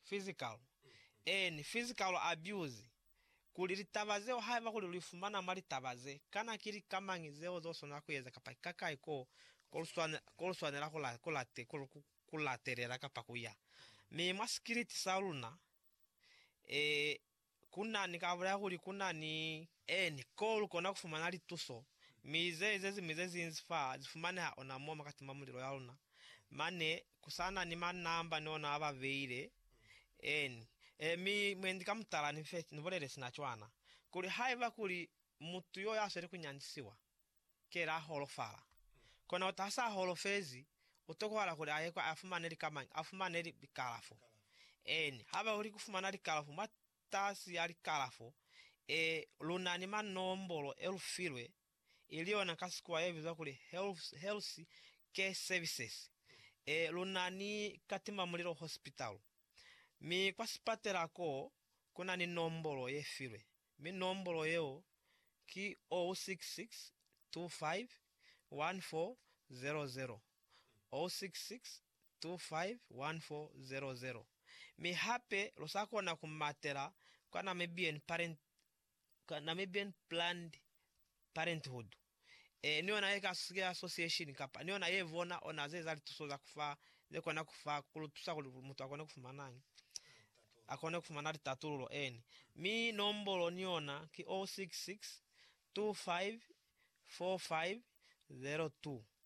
physical and physical abuse, kuli litaba zeo haiba kuli luifumana mwa litaba ze, kana ki lika mañi zeo zeluswanela kueza kapa ki kakai ko koluswanela kulatelela kapa kuya. Mi mwa sikiliti saluna, Ku na ni kabo ya kuli ku na ni. Eni, koo lu kona ku fumana lituso, mi ze, ze ziñwi ze zinzi fa zi fumaneha ona mo mwa katima mulilo ya luna. Mane, ku sa na ni manamba ni ona a ba beile. Eni. E, mi mwendi ka mutala ni fe, ni bulele sina cwana, kuli haiba kuli mutu yo ya sweli ku nyandisiwa. Ki la holofala. Kona kuti ha sa holofezi, u tokohala kuli a ye kwa a fumane likamañi? A fumane likalafo. Eeni, ha ba uli ku fumana likalafo mwa tasi ya likalafo, e, lu na ni manombolo e lu filwe, ili yona ka Sikuwa ye bizwa kuli Health, Health Care Services. E, lu na ni Katimamulilo Hospital. Mi kwa sipatela koo, ku na ni nombolo ye filwe. Mi nombolo yeo ki 0662514000, 0662514000. Mi hape lu sa kona ku matela kwa Namibian Parent, Namibian Planned Parenthood. e, ni ona ye ka sika ya association kapa ni ona ye bona ona ze eza lituso za ku fa ze kona ku fa ku lu tusa kuli mutu a kone ku fumanañi? A kone ku fumana litatululo, eni. Mi nombolo ni yona ki 066 25 45 02.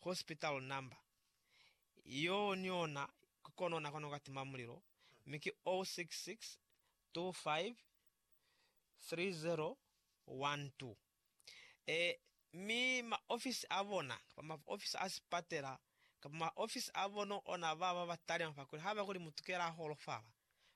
hospital number, yoo ni ona ki kona ona kona ku ka tima mulilo, mi ki 066253012. Ee, mi ma ofisi a bona, kapa ma ofisi a sipatela, kapa ma ofisi a bona ona ba ba ba talima fa kuli ha ba kuli mutu kela a holofala,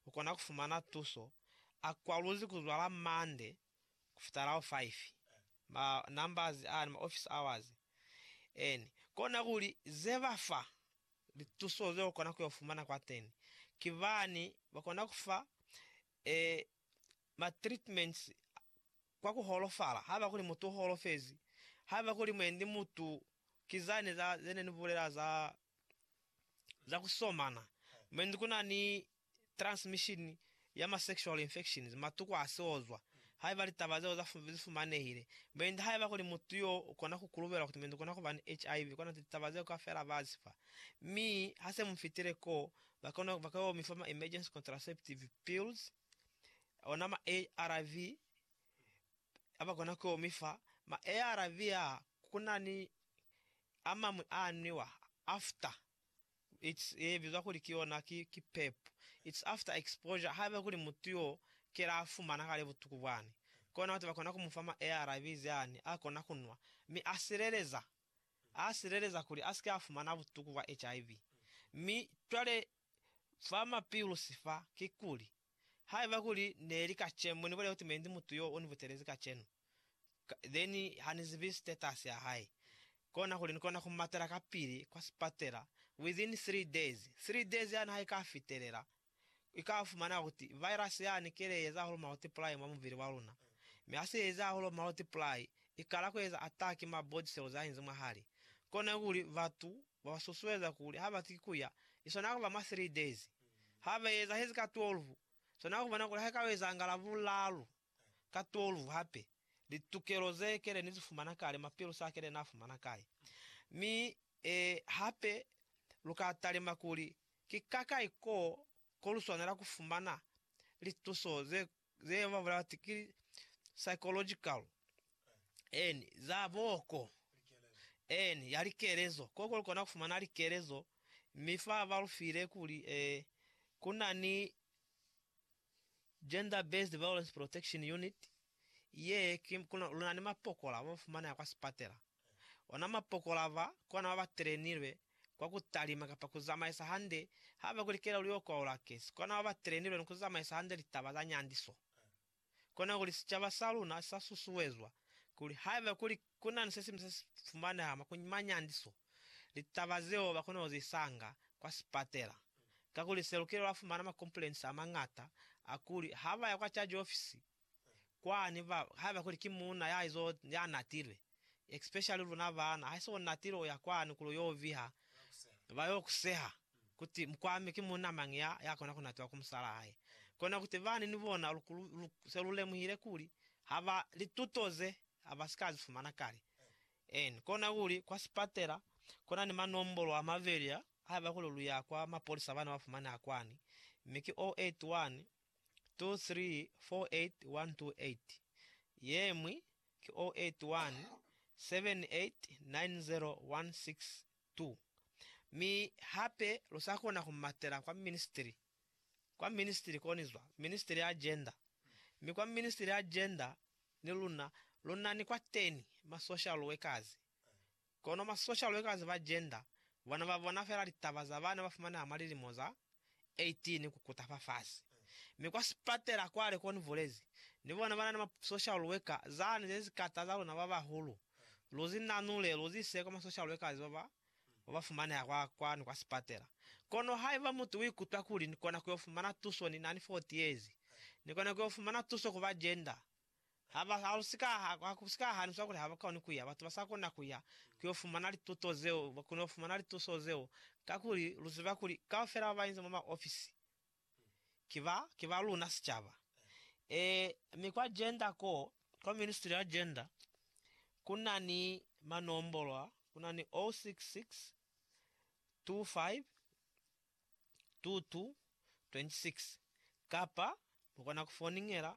u kona ku fumana tuso, a kwaluzi ku zwala Monday, kufitalaho 5, ma numbers ani, ma office hours eni, kona kuli ze ba fa lituso ze ukona ku yo fumana kwateni ki bani ba kona ku fa e ma treatments kwa ku holofala, haiba kuli mutu u holofezi, haiba kuli mwendi mutu ki zani za zene ni bulela za za ku somana, mwendi kuna ni transmission ya ma sexual infections, matuku a siozwa, haiba litaba zeo za zi fumanehile. Mainda haiba kuli mutu yo u kona ku kulubelwa kuti mainda u kona ku ba ni HIV, kona kuti litaba zeo kaufela ba zi fa. Mi, ha se mu fitile koo, ba kona, ba ka yo mi fa ma emergency contraceptive pills, ona ma ARV, a ba kona ku yo mi fa. Ma ARV aa, ku na ni a mañwi a nwiwa after It's ye bizwa kuli ki yona ki, ki pep. It's after exposure, haiba kuli mutu yo kela a fumana kale butuku bwani, kona batu bakona ku mufa ma ARVs yani, a kona ku nwa, mi a sileleza, a sileleza kuli asike a fumana butuku bwa HIV. Mi cwale fa ma pills fa, kikuli, haiba kuli neli kacemu, ni bulele kuti mendi mutu yo uni butelezi kacenu. then ha ni zibi status ya hae, kona kuli ni kona ku matela kapili kwa sipatela within three days. Three days yani ha ika fitelela, i ka fumana kuti virus yani ki le eza hahulu multiply mwa mubili wa luna. Mi ha se eza hahulu multiply, i kala ku eza attack mwa body cells a inzi mwahali. Kona kuli batu ba ba susueza kuli ha bati ku ya, i swanela ku ba mwa three days. Ha ba ezahezi ka 12, swanela ku bona kuli ha ika ezangala bulalu. ka tolu hape, litukelo ze kele ni zifumana kale, mapilo sa kele na fumana kai. Mi, e, hape, lu ka talima kuli, Ki kakai ko, ko lu swanela ku fumana lituso ze, ze ba bulela bati ki psychological, en, za boko, en, ya likelezo, ko, ko lu kona ku fumana likelezo, mi fa ba lu file kuli, e, ku na ni. Gender Based Violence Protection Unit, ye ki kuna luna ni mapokola ba fumaneha kwa sipatela. Ona mapokola ba, kona baba trenilwe kwa ku talima kapa ku zamaisa hande ha ba kuli kelelo yo kwaula kesi, kona baba trenilwe ni ku zamaisa hande litaba za nyandiso. Kona kuli sicaba sa luna sa susuezwa kuli haiba kuli Ku na ni se siñwi se si fumaneha mwa ku ni manyandiso, litaba zeo ba kona ku zi sanga kwa sipatela. Kakuli Selukile wa fumana makompulensi a mañata a kuli ha ba ya kwa caji ofisi kwani ba haiba kuli ki muuna ya izo ya natilwe, especially luna baana, ha se u natilwe u ya kwani kuli u yo viha, ba yo ku seha kuti, Mukwami, ki muuna mañi ya ya kona ku natiwa ku musalaa hae? Kona kuti bani ni bona lu, lu se lu lemuhile kuli ha ba lituto ze ha ba si ka zi fumana kale. N kona kuli, kwa sipatela, ku na ni manombolo a mabeli a, haiba kuli lu ya kwa mapolisa ba na ba fumaneha kwani, mi ki 081 2348 128, ye ñwi ki 081 7890 162. Mi hape lu sa kona ku matela kwa ministri kwa ministili koni zwa ministili ya gender mi kwa ministili ya gender ni luna lunani kwa teni ma social workers kono ma social workers ba gender bona ba bona fela litaba za bana ba fumaneha mwa lilimo za 18 ku kuta fa fasi mi kwa sipatela kwale koni bulezi ni bona banani ma social worker zani ze zikata za luna ba bahulu lu zi nanule lu zi ise kwa ma social workers ba ba wa ba fumaneha kwa kwanu kwa sipatela. Kono haiba mutu uikutwa kuli ni kona kuyo fumana tuso ni nani 40 years, ni kona kuyo fumana tuso ku ba gender. Ha ba, ha lu si ka, ha, ha ku si ka haniswa kuli ha ba koni kuya. Batu ba sa kona kuya kuyo fumana lituto zeo, ba kona yo fumana lituso zeo, kakuli lu ziba kuli kaufela ba ba inza mwa ma ofisi, ki ba, ki ba luna sicaba. Ee, mi kwa Gender ko, kwa ministry ya Gender, ku na ni manombolo a, ku na ni 066252226, kapa lukona ku foniñela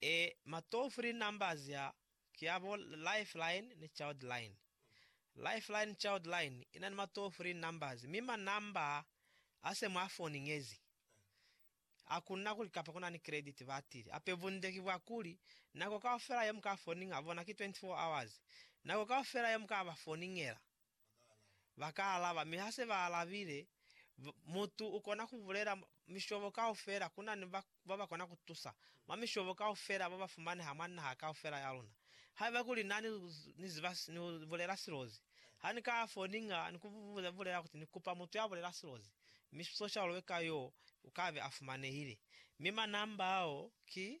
E ma toll free numbers a ki a bo Lifeline ni Childline. Lifeline Childline i na ni ma toll free numbers mi ma number a se mwa foni ngezi. Ha ku na kuli kapa ku na ni credit batili hape bunde ki bwa kuli nako kaufela ye mu ka foninga bona ki 24 hours, nako kaufela ye mu ka ba foningela. Ba ka alaba, mi ha se ba alabile, mutu u kona ku bulela mishobo kaufela. Ku na ni ba ba kona ku tusa mwa mishobo kaufela ba ba fumaneha mwa naha kaufela ya luna. Haiba kuli na ni ziba ni bulela silozi, ha ni ka ya foninga ni ku bulela kuti ni kupa mutu ya bulela silozi, mi social worker yoo u ka be a fumanehile. Mi manamba ao ki,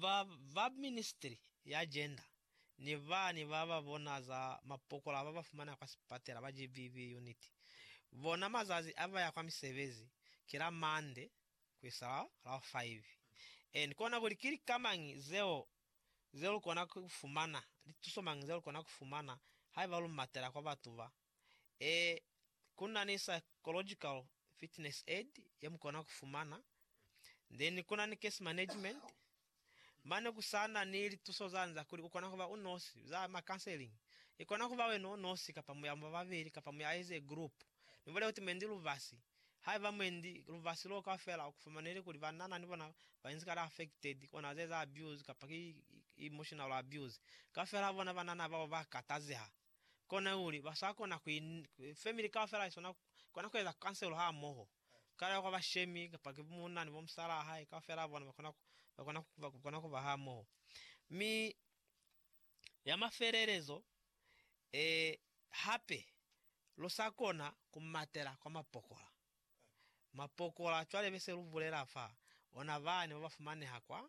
ba ba Ministry ya Gender ni bani ba ba bona za mapokola ba ba fumana kwa sipatela ba GBV unit bona mazazi a ba ya kwa misebezi ki la Monday ku isa la la 5 and kona kuli ki lika mañi zeo ze lu kona ku fumana, li tuso mañi ze lu kona ku fumana haiba lu matela kwa batu ba Ee, ku na ni psychological fitness aid ye mu kona ku fumana, then ku na ni case management. Mane ku sa na ni lituso za nza kuli u kona ku ba u nosi, za ma counseling. I kona ku ba wena u nosi kapa mu ya mwa babeli kapa mu ya as a group. Mi bole kuti mwendi lubasi. Haiba mwendi lubasi loo kaufela u ku fumaneli kuli banana ni bona ba inzi kale affected, kona za eza abuse kapa ki emotional abuse, kaufela ha bona banana bao ba katazeha. kona kuli ba sa kona ku family kaufela i sona kona ku eza kanselo ha moho kale kwa bashemi kapa ki munna ni bomusala hae kaufela bona ba kona ba kona ba kona ku ba ha moho mi ya mafelelezo e hape lu sa kona ku matela kwa mapokola mapokola cwale be se lu bulela fa ona bane ba ba fumaneha kwa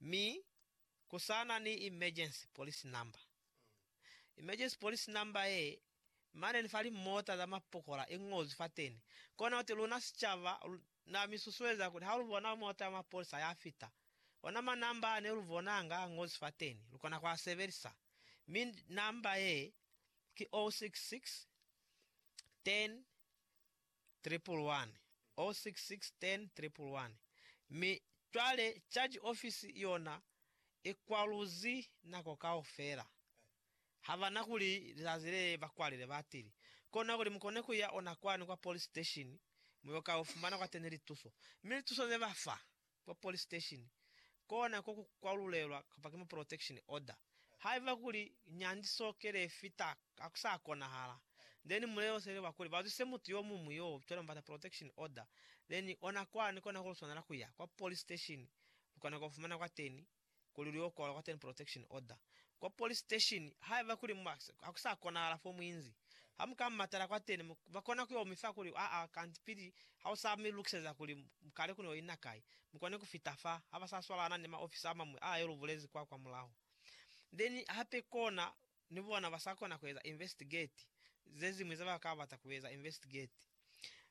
mi kusana ni emergency police number. Emergency police number ye, mane ni fa limota za mapokola i ngozwi fateni. Kona kuti luna sicaba, na mi susueza kuli ha lu bona mota ya mapolisa ya fita, ona ma number a ne lu bonanga a ngozwi fateni, lu kona ku a sebelisa. Mi number ye ki 066 10 111 066 10 111 Mi cwale Charge Office yona i kwaluzi nako kaufela. Ha ba na kuli lizazi le ba kwalile batili. Kona kuli mukone ku ya ona kwani kwa Police Station, mu yo ka ufumana kwateni lituso. Mi lituso ze ba fa, kwa police station kona ko ku kwalulelwa kapa ki mu protection order. Haiba kuli nyandi sokele i fita ha ku sa konahala, then mu lelosele ba kuli ba zwise mutu yo muñwi yo cwale mu bata protection order, then ona kwani kona ku lu swanela ku ya kwa police station lu kona ku fumana kwateni kuli lu yo kwalwa kwa Ten Protection Order kwa police station haiba kuli mu ba ha ku sa konahala fo mu inzi. Ha mu ka matala kwateni, mu ba kona ku yo mi fa kuli, Aa, kanti pili ha u sa mi lukiseza kuli mu kale ku no ina kai, mu kone ku fita fa, ha ba sa swalana ni maofisa a mañwi a yo lu bulezi kwa kwamulaho. Then hape kona ni bona ba sa kona ku eza investigate ze ziñwi ze ba ka bata ku eza investigate.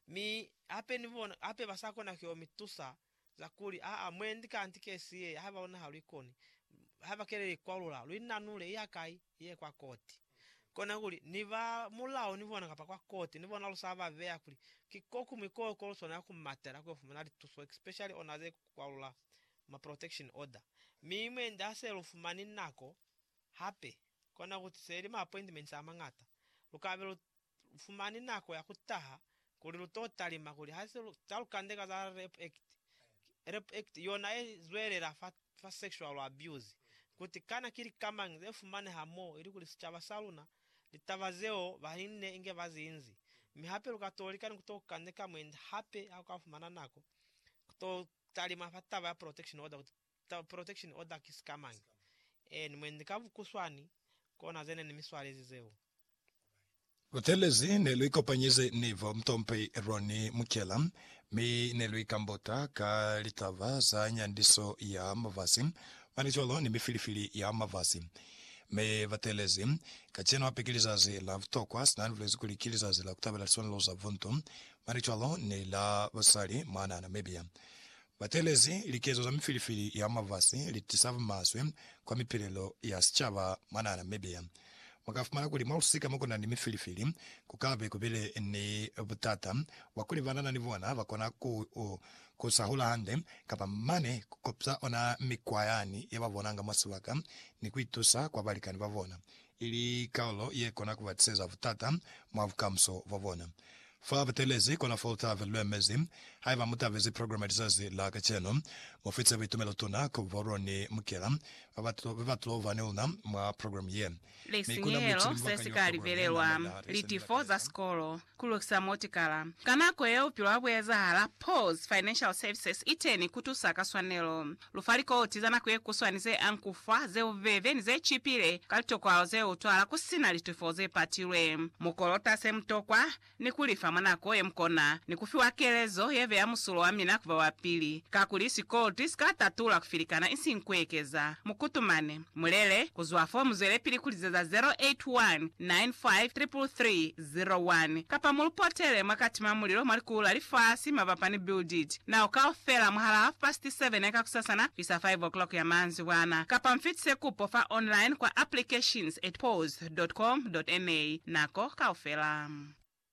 Mi hape ni bona hape ba sa kona ku yo mi tusa za kuli, aa, mwendi kanti kesi ye, haiba luna ha lu ikoni, haiba ke le ikwalula, lu inanule, iya kai? Iye kwa koti. Kona kuli, ni ba mulao ni bona kapa kwa koti ni bona lu sa ba beya kuli ki ko kuñwi koo ko lu swanela ku matela ku yo fumana lituso, especially ona ze kwalula ma protection order. Mi mwendi ha se lu fumani nako, Hape, kona ku tusa ili ma appointments a mañata, lu ka be lu fumani nako ya ku taha kuli lu to talima kuli ha se lu ta lu kandeka za Rape Act, Rape Act yona ye zwelela fa, fa sexual abuse, kuti kana ki lika mañi ze fumaneha mo ili kuli sicaba sa luna, litaba zeo ba inne inge ba zi inzi. Mi hape lu ka to lika ni ku to kandeka mwendi hape ha lu ka fumana nako, ku to talima fa taba ya protection order kuti The protection order ki sikamañi? Any mwendi ka bukuswani kona ze ne ni mi swalezi zeo. Buthelezi ne lu ikopanyize ni bo Mtompi Ronnie Mukyela mi ne lu ikambota ka litaba za nyandiso ya mafasi, malicwalo ni mifilifili ya mafasi. Mi ba teelezi. Kacenu hape ki lizazi la butokwa, sina ni bulezi kuli ki lizazi la ku tabela liswanelo za buntu, malicwalo ni la basali mwanaa Namibia. Batelezi likezo za mifilifili ya mwa lifasi litisa bumaswe kwa mipilelo ya sicaba mwa naha Namibia. Mwakafumana kuli mwa lusika mokuna ni mifilifili kukabe kubile ni butata bwa kuli banana ni bona bakona ku ku sa hula hande kapa mane kukopsa ona mikwa yani yababonanga mwa sibaka ni kuitusa kwa balikani babona. ili kalulo ye kona ku ba tiseza butata mwa bukamuso bwa bona. Fa ba teelezi kona fo lutabe lu emezi. Haiba mu tabezi programa ya lizazi la kacenu, mu fitise buitumelo tuna ku Borrow ni Mukela ba ba be ba tulo ba ni luna mwa programa ye. Lisinyehelo se si ka libelelwa, Litifo za sikolo, Ku lukisa motikala. Ka nako ye bupilo ha bu ezahala, Paul's Financial Services i teni ku tusa ka swanelo. Lu fa likoti za nako ye kuswani ze ang ku fa, ze bubebe, ni ze cipile ka litokwalo ze utwala ku si na litofo ze patilwe. Mu kolota se mu tokwa, ni ku li fa mwa nako ye mu kona, ni ku fiwa kelezo ye beya musulo wa mina ku ba wa pili. Kakuli sikoloti si ka tatula ku filikana, isiñi ku ekeza. Mu kutumane. Mulele ku zwa fo mu zwelepili ku lizeza 0819533301 kapa mu lu potele mwa Katima Mulilo mwa Likulu la Lifasi mabapa ni Build It Now kaufela mwahal'a half past seven ya kakusasana kuisa five o'clock ya manzibwana, kapa mu fitise kupo fa online kwa applications at pause dot com dot na nako kaufela.